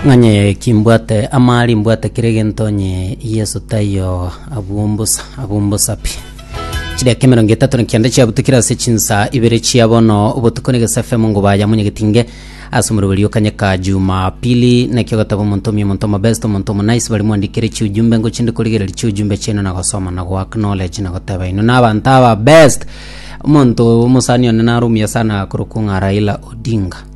Ng'anye kimbwate amari mbwate kere egento onye Yeso taiyo abwo mbosa abwo mbosa pi chidakika emerongo etato na kianda chiabutukire ase chinsa ibere chia bono obotuko na egesa fm ngo baya munyegetinge ase omoroberi okanyeka jumapili nakio gataba omonto omia omonto omobest omonto omonais bari mwandikire chiujumbe ngo chinde korigereria chiujumbe chiaino na gosoma na go acknowledge na goteba ino na abanto aba best omonto omosani one narumia sana korokwa ng'a Raila Odinga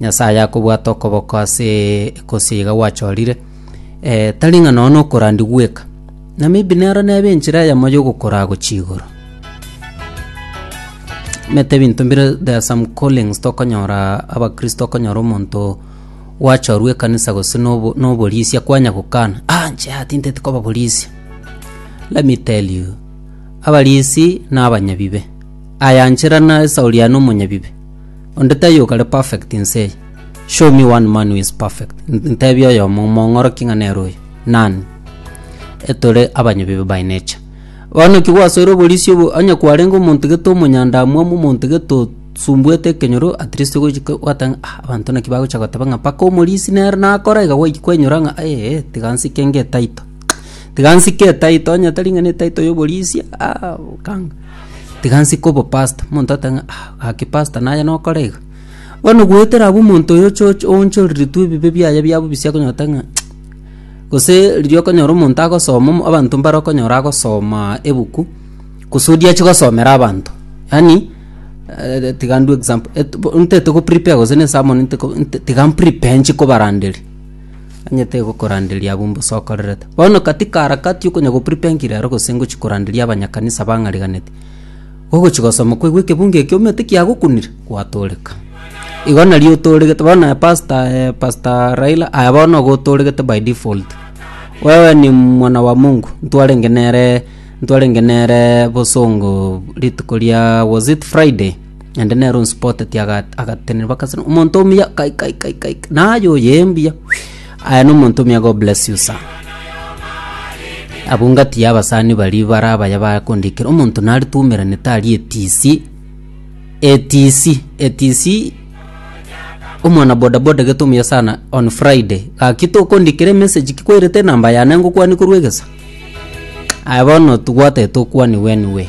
Nyasae akobwata okoboko ase gose iga gwachorire, eh, tari ng'a nonya nokorandia gweka, na maybe nero nebe enchera eyemo yogokoraa gochia igoro. Omanyete ebinto mbire there are some callings tokonyora abakristo okonyora omonto gwachorwa ekanisa gose na obo- na oborisia kwanya gokana, ah inche yaya tinteti koba borisia. Let me tell you, abarisi na abanyabibe. Aya nchera na Sauli aye na omonyabibe. Onde taiyo okare perfect inse eye. Show me one man who is perfect. N- Ntebie oyomo omong'oroki ng'a nere oyo. None. Etore abanyabibe by nature. Bono ki gwasoire oborisia obo onye kwarenge omonto gete omonyandamwamu omonto gete osumbuete ekenyoro at least ogochika gwateba ng'a ah abanto naki bagocha goteba ng'a mpaka omorisia nere nakora iga gwaika kwainyora ng'a eeh tiga nsike ng'e title. Tiga nsike etitle onye tari ng'a ne etitle ya oborisia ah okanga. Tiga nsike obopasta, omonto agote ng'a ah gaki pasta naye nokore iga. Bono goetera abwo omonto oyo oche oche oonchoreretwe ebibe biaye bia bobisia okonyora ote ng'a gose riria okonyora omonto agosoma omo abanto mbare okonyora agosomaa ebuku gose oria achi gosomera abanto. Yaani tiga ndue example et bo ntete goprepare gose ne esermon nte ko nte tiga mprepare nchi kobaranderia. Onye tegokoranderia abwo mbosokorerete. Bono katika harakati yokonya gopripenki rero gose ngochi koranderia abanyakanisa abang'ariganeti, gogochi gosoma kwaigwa ekebunga ekio omanyete kiagokunire, gwatooreka. Igo nario otooregete bono aye pastor aye pastor Raila aye bono igo otooregete by default. Wewe ni mwana wa Mungu, ntwarenge nere ntwarenge nere bosongo rituko ria was it Friday? naende nere onsipotetie aga- agatenena bakasana omonto omuya kai kai kai kai kai, naye oye mbuya aye nomonto omuya god bless you sir abungatie abasani baria bare abaya bakondikera omonto nare twaumeranete aria etisi etisi etisi omwana bodaboda gete omuya sana on friday gaki tokondikera emessage ki kwairete enamba yane ngokwania korwa egesa aye bono tobwatete okwani weni we.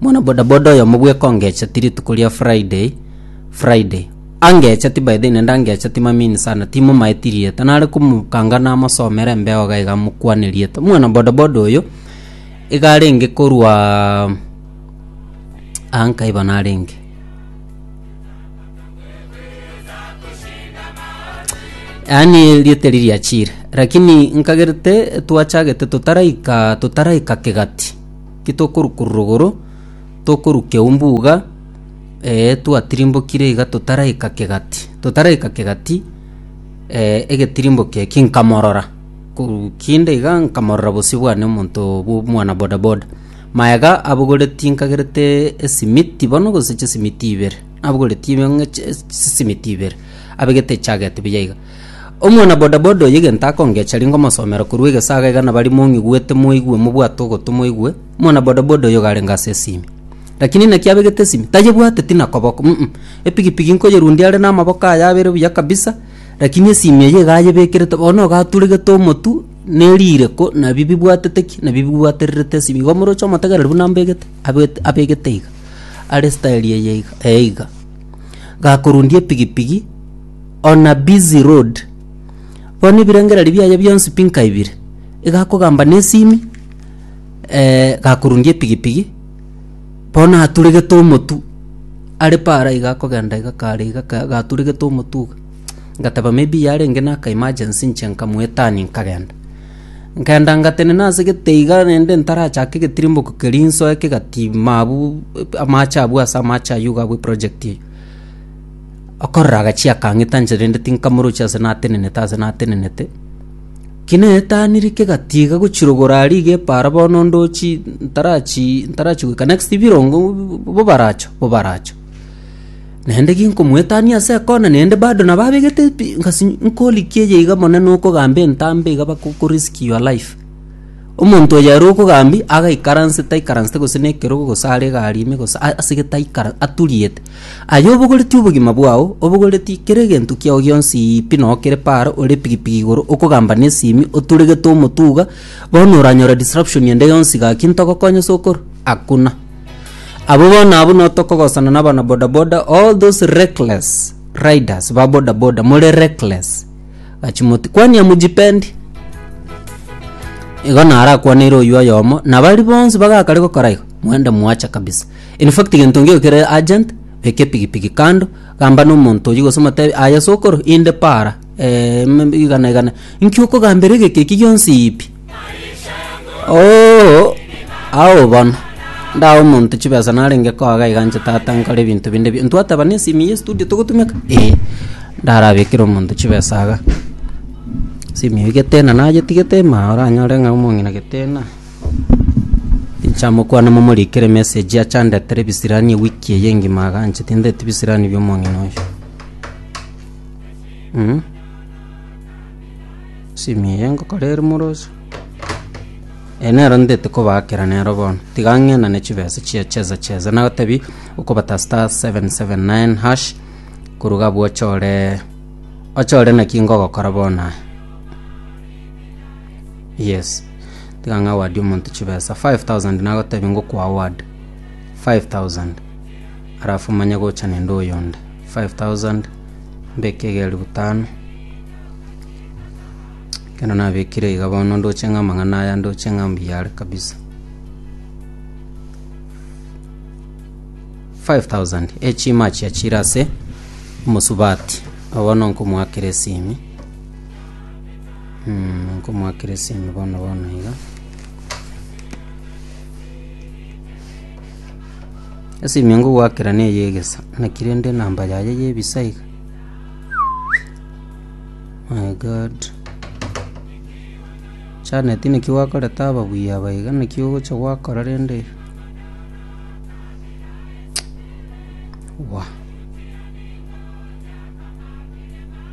Mwana bodaboda oyomo bweka ongecheti rituko ria Friday Friday angecheti by the way nende angecheti mamini sana timomaeti rieta nare komokanga namosomere embeo iga iga mokwane rieta mwana bodaboda oyo iga arenge korwa aa nkaiba narenge yaani rieta eri riachire lakini nkagerete twachagete totaraika totaraika kegati Titokorukururwa igoro, tokorukia umbuga, ee, twatirimbokire iga totaraika kegati. Totaraika kegati, ee, egetirimbokio ekio nkamorora, korwa kinde iga nkamorora bosio bwane omonto bwo omwana bodaboda. Maega abogoreti nkagerete esimiti bono gose chisimiti ibere, nabogoretie bang'e chi- chisimiti ibere, abegete echageti buya iga. Omwana bodaboda oyo egento akongecha ringo omosomero korwa egesaga iga nabari mong'igwete moigwe mobwate ogotu moigwe omwana bodaboda oyo garenge ase esimi lakini naki abegete esimi tayebwate tina koboko mm epigipigi nkoyerundia are namaboko aye abere buya kabisa lakini esimi eye iga ayebekerete bono iga aturegete omotu na erireko nabi bibwatete ki nabi bibwatererete esimi igo omoroche omotegereri buna mbegete abwete abegete iga are style eye iga eye iga gakorundia epigipigi. On a busy road. Bono ebirengererio biaye bionsi pi nkaibire. Iga akogamba na esimi, eh, gakorundia epigipigi, bono aturegete omotu, are paara iga akogenda iga kare iga ka gaturegete omotu iga. Ngateba may be yarenge na aka emergency inche nkamoe turn nkagenda. Nkenda ngatenena ase gete iga naende ntarachake egetirimbogo keria nsoe kegatiima abwo amache abwo ase amache aywo iga abwo eprojekti eywo. Okorora agachie akang'ita nchera ende tinkamorochi ase natenenete ase natenenete. Ki netaniri kegatiga gochirogora aria iga epaara bono ndochi ntarachi ntarachi goika next birongo bobaracho bobaracho. Naende ginkomoetania ase ekona naende bado nabo abegete pi ngasi nkorikia eye iga monene okogamba entambe iga bako ko risk your life. Omonto oyo ere okogambia agaikaranse taikaransete gose nekerogo gose are egari ime gose asegete aikara aturiete. Aye obogoretie obogima bwao, obogoretie kera egento kiao gionsi, pi nokere Paaro ore pigipigi igoro okogamba nesimi oturegete omotuga, bono oranyore disruption ende yonsi gaki ntogokonye sokoro? Hakuna. Abo bono abwo notokogosana na abana bodaboda all those reckless riders ba bodaboda more reckless. Gachi moti kwani amujipendi? igo narakwaneire oyio oyomo na bari bonsi bagakare gokora igo mwende mwacha kabisa In fact gento ngio kere urgent, beka epigipigi kando, gamba na omonto oyio gose omotebi aye sokoro inde para eh, mm, igana igana. Inki okogambera egeke eki gionsi ipi? Oo, ao bono ndae omonto chibesa narenge koaga iga nche tata nkore ebinto binde bi ntwateba na esimi ya estudio togotumeka ee ndarabekere omonto chibesa iga esimi eye getena nayetigete maa oranyore ng'a omong'ina getena Inche amokwana momorikere message achandetera ebisirani ewiki eye engima aganche tindete ebisirani biomong'ina oyo mm? simi eye ngokora ere moroso eye nero ndete kobakera nero bono tiga ng'enane chibesa chia cheza cheza nagotebi okobata star 779 hash koruga abwo ochore ochore naki ngogokora bono aya yes Tiga ng'awadi omonto chibesa 5000 nagotebie ngokwaward 5000 alafu manye gocha nende oyonde 5000 mbeke egeri butano ekero nabekire iga bono ndoche ng'a amang'ana aya ndoche ng'a mbuya are kabisa 5000 echima achia chire ase omosubati nabo bono nkomoakera esimi Nkomoakerese'ime bono bono iga. Esimi ngogoakera neye y'egesa, naki rende enamba yaye y'ebisa iga. My God. Janet naki gwakorete ababuya aba iga, naki ogocha gwakora rende iga. Wah.